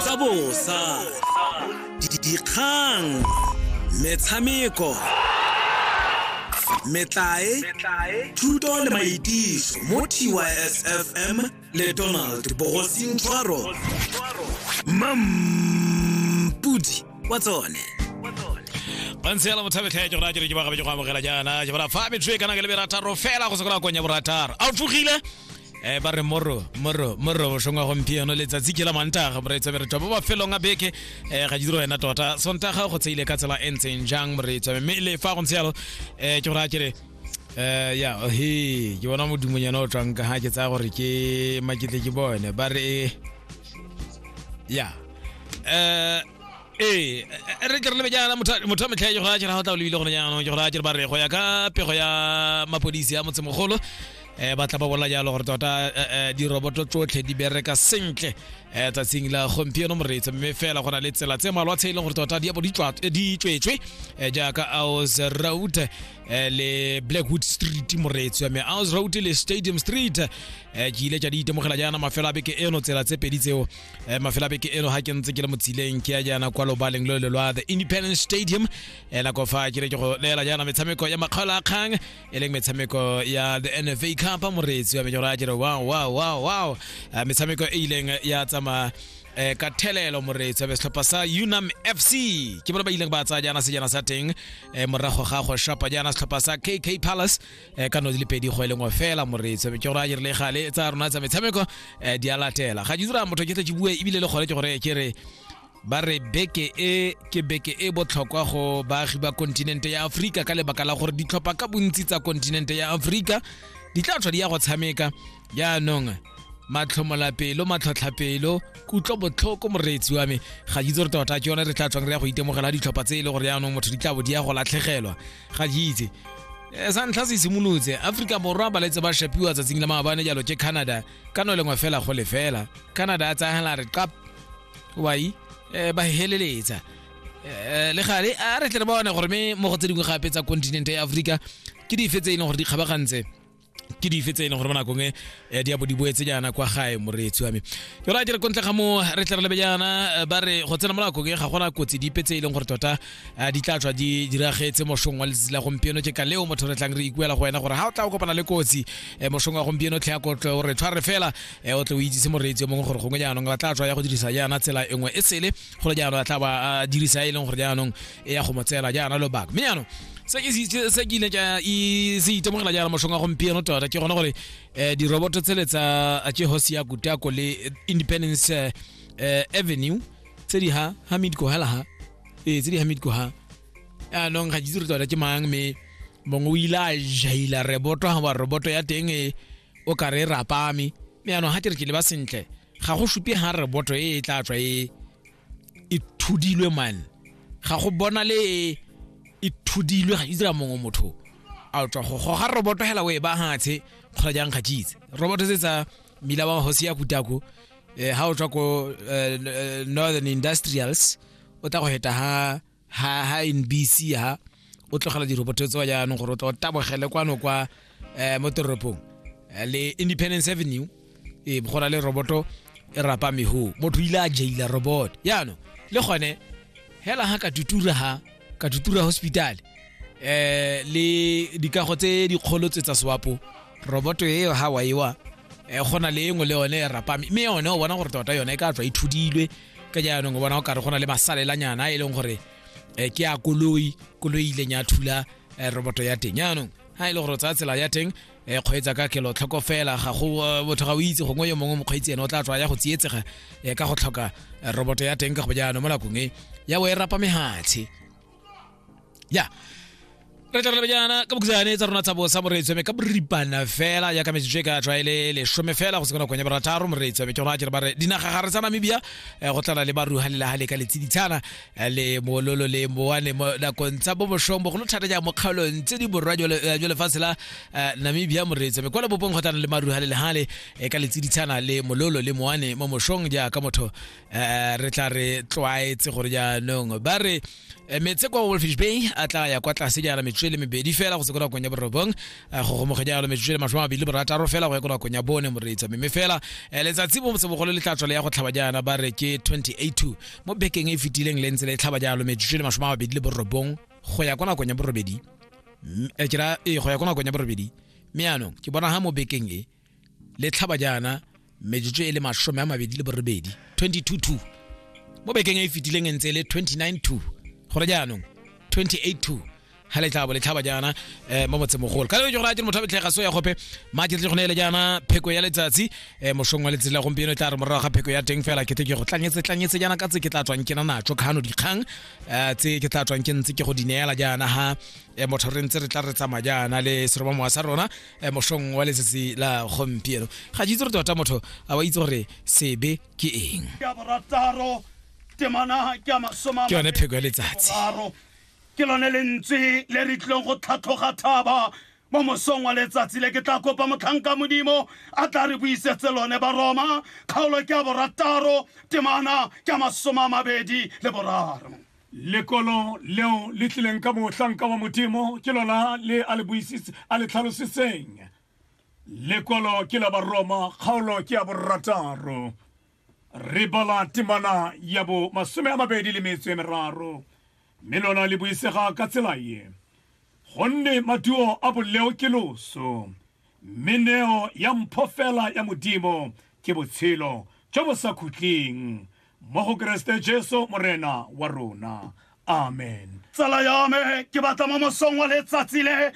tsa bosa dikgang metshameko metlae thuto le maitiso mo tysfm le donald bogosintshwaro mampudi wa tsone bantsela mothabekgeke gona ke re ke bagabe ke go amogela jaana ke bora fa metšo e kana ke le berataro fela go sekola konya borataro a o tlogile eh ba re moro moro moro bošong wa gompieno letsatsi ke la mantaga moreetsa meretwa mo mafelong a beke eh ga diro wena tota sontaga go tseile ka tsela e ntseng jang moreetsa mme le fa go ntse yalo eh ke gore a kere eh ya he ke bona modimonyana o tswang ka ga ke tsaya gore ke maketle ke bone ba re ya eh ee re ke re lebe jaana motho a metlhae ke go a kere ga o tla o lebile gone jaanong ke gore a kere ba re go ya ka pego ya mapodisi ya motsemogolo eh ba tla ba bola jalo gore tota eh, eh, diroboto tsotlhe di bereka sentle eh tsatsing la gompieno moreetsa mme fela go na le tsela tse malwa tse e leng gore tota di abo di tswa- eh, di tswetswe eh, jaaka aus road eh, le blackwood street moreetsi wa me aus road le stadium street eh, ke ile tša di itemogela jaana mafelo a beke eno tsela tse pedi tseo eh, mafelo a beke eno ga ke ntse ke le motsileng ke ya jaana kwa lobaleng lo le lwa the independence stadium eh, nako fa ke re ke go leela jaana metshameko ya makgaola a kgang e leng metshameko ya the nfa cup moreetsi wa menyora a jere wow wow wow wow Eh, metshameko e ileng ya tsamaya eh, ka thelelo moreetsi wa be setlhopha sa unam fc ke bone ba ileng ba tsaya jaana sejana sa teng eh, morago ga go shapa jaana setlhopha sa kk palace eh, ka no di le pedi go e lengwe fela moreetsi wa be ke gore a jere le gale tsa rona tsa metshameko eh, di a latela ga ke dira motho ke tle ke bue ebile le gone ke gore ke re ba re beke e ke beke e botlhokwa go baagi ba kontinente ya aforika ka lebaka la gore ditlhopha ka bontsi tsa kontinente ya aforika di tla tlhwa di ya go tshameka jaanong matlhomolapelo matlhotlhapelo kutlo botlhoko moreetsi wa me ga ke itse gore tota ke yone re tla tswang re ya go itemogela ditlhopha tse e le gore jaanong motho di tla bo di ya go latlhegelwa ga ke itse eh, sa ntlha se simolotse aforika borwa ba letse ba shapiwa tsatsing la maabane jalo ke canada ka no lengwe fela go lefela canada a tsayagela re qap wai eh, ba heleletsa Eh, le gale a re tle re bone gore me mo go tse dingwe gape tsa continente ya aforika ke dife tse e leng gore di kgabagantse ke dife tse e leng gore mo nakong e eh, di a bo di boetse jaana kwa gae moreetsi wa me ke ra dire kontle ga mo re tle re lebe jaana eh, ba re go tsena mo nakong e ga gona kotsi dipe tse e leng gore tota eh, di tla tswa di diragetse mošong wa letsatsi la gompieno ke ka leo motho re tlang re ikuela go wena gore ga o tla o kopana le kotsi eh, mošong wa gompieno tlhe ya kotlo o re tshware fela e o tle o itsise moreetsi yo mongwe gore gongwe jaanong ba tla tswa ya go dirisa jaana tsela e nngwe e sele gore jaanong a tla ba a dirisa e leng gore jaanong e ya go mo tseela jaana lobaka mme jaanong se ke se- se ke ile ka i- se itemogela jaana moshong wa gompieno tota ke gone gore um diroboto tsele tsa jehosi ya kutako le independence eh, eh, avenue tse di ha hamid kohela ha ee tse di hamid koha anong ga ke itse gore tota ke mang mme mongwe o ile a jaila reboto ga ba roboto ya teng e o ka re e rapame mme yaanong ga ke re ke leba sentle ga go supe ga re boto e e tla tswa e e thudilwe man ga go bona le e e thudilwe ga itse ka mongwe motho a tswa go goga roboto hela o e ba hatshe kgora jang ga jitse roboto se tsa mila wa hosi ya kutako eh, ha o tswa ko eh, eh, northern industrials o tla go heta ha ha ha NBC ha o tlogela diroboto tsewa jaanong gore o tla o tabogele kwano kwa um mo toropong eh, le independence avenue e go na le roboto e rapa meho motho ile a jaila robot yaanong le gone hela ha ka tutura ha ka tutura hospital eh le dikago tse dikgolo tse tsa swapo roboto eo ha wa ewa eh gona le engwe le yone e rapame mme yone o bona gore tota yone e ka tswa e thudilwe ka jaanong o bona o kare go na le masalelanyana a e leng gore um ke a koloi koloi ileng ya thula um roboto ya teng jaanong ha e le gore o tsaya tsela ya teng um kgweetsa ka kelotlhoko fela ga go botho ga o itse gongwe yo mongwe mokgweetsi ene o tla tswa ya go tsietsega um ka go tlhoka roboto ya teng ka go jaanong mo nakong e ya bo e rapa mehatshe ya re tla re jaana ka bokhutsane tsa rona tsa bosa moreetsweme ka boripana fela ya ka metsotso e ka tswa e le lesome fela go se kona konya barataro moreetsweme ke gona ke re ba re dinaga gare tsa namibia eh, go tlala le baruga le laga le ka letsiditshana eh, le mololo le moane mo nakong tsa bo boshong bogolo thata ja mo kgaolong tse di borwa jwa le- eh, jwa lefatshe la eh, namibia moreetsweme kwa lebopong go tlana le maruga le legale eh, ka letsiditshana le mololo le moane mo moshong jaaka motho um re tla re tlwaetse gore jaanong ba re eh, metse kwa wolfish bay a tla ya kwa tlase jaana metsotso e le mebedi fela go se ko nakong ya borobong eh, go gomoge jalo metsotso e le masome a mabedi le borataro fela go ya ko nakong ya bone moreetsa mme fela eh, letsatsi bo sebogolo le tla tswale ya go tlhaba jaana ba re ke 282 mo bekeng e fetileng le ntse le tlhaba jalo metsotso e le masome a mabedi le borobong go ya kwa nakong ya borobedi ke ra ee go ya kwa nakong ya borobedi mme yaanong ke bona ga mo bekeng e le tlhaba jaana metsotso e le masome a mabedi le borobedi 22 mo bekeng e e fetileng e ntse e le 29 gore jaanong 28 ha le tlabo le tlhaba jaana eh, mo motsemogolo ka leo gore a dire motho a betlhega so ya gope maje tle gone ele jaana pheko ya letsatsi eh, mosong wa letsatsi la gompieno e tla re morago ga pheko ya teng fela ke te ke go tlanyetse tlanyetse jaana ka tse ke tla tswang ke na natso khano dikgang eh, tse ke tla tswang ke ntse ke go di neela jaana ha eh, motho re ntse re tla re tsamaya jaana le seromamowa sa rona eh, mosong wa letsatsi la gompieno ga itse gore tota motho a wa itse gore sebe ke eng ke yone pheko ya letsatsi ke lone lentswe le re tlileng go tlhatlhoga thaba mo mosong wa letsatsi le ke tla kopa motlhanka modimo a tla re buisetse lone baroma kgaolo ke ya borataro temana ke ya masoma a mabedi le boraro Lekolo leo le tlileng ka mohlanka wa Modimo ke lona le a le buisitse a le tlhalositseng. Lekolo ke la Baroma kgaolo ke ya borataro. Re bala temana ya bo masome a mabedi le metso e meraro, mme lona le buisega ka tsela ye, Gonne maduo a boleo ke loso, mme neo ya mpho fela ya Modimo ke botshelo jo bo sa khutleng, mo go keresete jesu morena wa rona amen tsala ya me ke batla mo mosong wa letsatsi le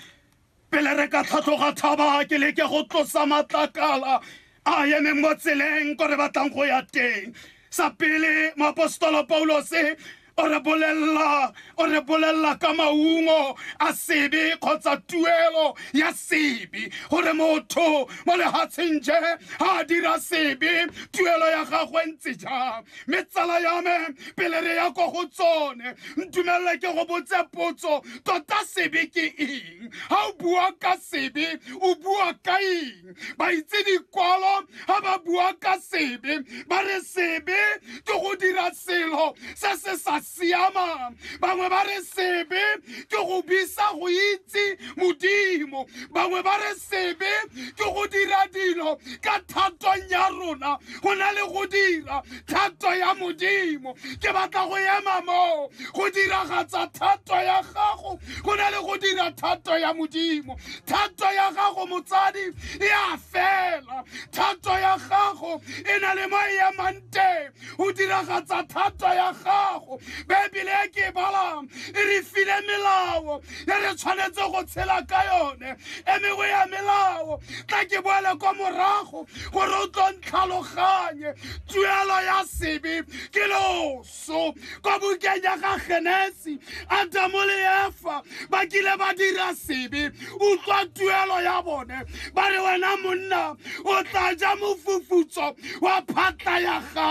pele re ka tlhatlhoga thaba ke leke go tlosa matlakala a emeng mo tseleng ko re batlang go ya teng sa pele moapostolo paulose o re bolelela o re bolelela ka maungo a sebe kgotsa tuelo ya sebe gore motho mo lehatsheng je ga a dira sebe tuelo ya gagwe ntse jang mme tsala ya me pele re ya ko go tsone ntumelele ke go botse potso tota sebe ke eng ga o bua ka sebe o bua ka eng ba itse dikwalo ga ba bua ka sebe ba re sebe ke go dira selo se se sa siamang bangwe ba re sebe ke go bisa go itse modimo bangwe ba re sebe ke go dira dilo ka thatong ya rona go na le go dira thato ya modimo ke batla go ema moo go diragatsa thato ya gago go na le go dira thato ya modimo thato ya gago motsadi e a fela thato ya gago e na le mo e emang teng o diragatsa thato ya gago baebele e ke e balang e re file melao e re tshwanetse go tshela ka yone e mengwe ya melao tla ke boele kwa morago gore o tlo ntlhaloganye tuelo ya sebe ke loso so kwa bukeng ya ga genesi adamo le efa ba kile ba dira sebe utlwa tuelo ya bone ba re wena monna o tla ja mofufutso wa phatla ya gago